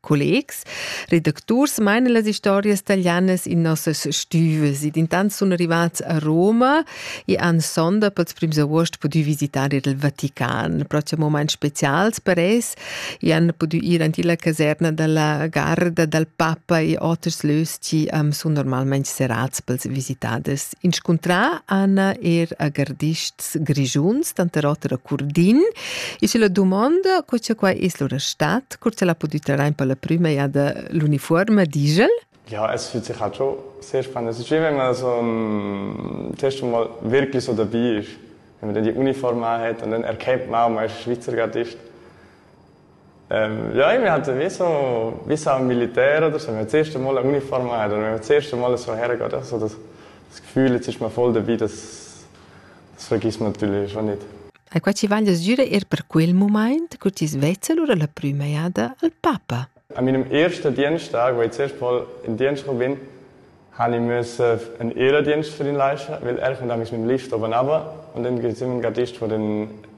Collegs, redacturs meinen las historias italianas in nossas stüves ed intant sun arrivats a Roma e han sonda pels prims avuost pudü visitar il Vatican. Prossim moment specials per es e han pudü ir ant illa caserna dalla garda dal papa e oters löschi am sun normalmaing serats pels visitaders Inscuntrà Anna er a gardists grischuns, tanter oter a Curdin. E sche la dumonda, co che quai es lura stat, cur che la pudü trair per la prüma jada l'unifuorma digl? Ja, es füt sicher giò sehr spannend. Es giovem, also zuerst einmal wirklich so dabei ist, wenn man dann die Uniform anhat und dann erkennt man, man ist Schweizer Gardist. Ja, mi han visu visa al militer oder so, mi hat zuerst einmal Uniforma oder mi hat zuerst einmal so hergeht, also das, das Gefühl, jetzt ist mir voll dabei, das, das vergiss man natürlich schon nicht. E qua ci van desire er per quel moment che ti svezza lura la prima jada al papa. An meinem ersten Diensttag, wo ich zuerst mal in Dienst bin, habe ich müssen einen Ehrendienst für ihn leisten, weil er kommt mit dem Lift oben runter und dann sind wir Gastist von den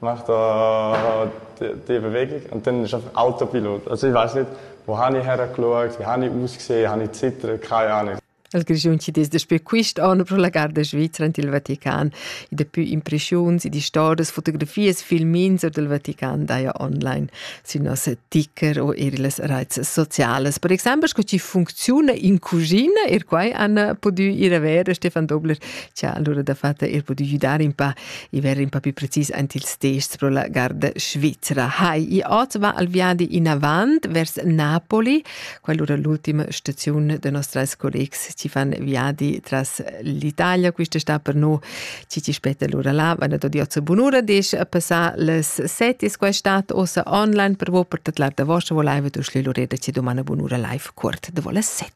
Marta die Bewegung und dann ist einfach Autopilot. Also ich weiß nicht, wo habe ich hergeschaut, wie habe ich ausgesehen, habe ich zittert, keine Ahnung. Il Grischun ci des daspö quist anno pro la garda svizra ant il Vatican. I dapü impreschiuns, i distordas, fotografias, filmins or del Vatican daja online sün nossa ticker o eir illas raits socialas. Per exemple, sco ci funcziuna in cuschina, er quai han pudü ir a ver. Stefan Dobler ci ha allura da fatta er pudü güdar in pa i ver in pa più precis ant ils tests pro la garda Svizzera. Hai, i ot va al viadi in avant vers Napoli, quell'ora l'ultima stazione dei nostri collegs ci fan viadi tras l'Italia, questa sta per noi ci ci spetta l'ora là, vanno da Diozzo Bunura, dice a passare le sette, quest'estate ossa online per voi per tot l'altra vostra voleva tu schlilorete ci domani Bunura live cort de vola sette.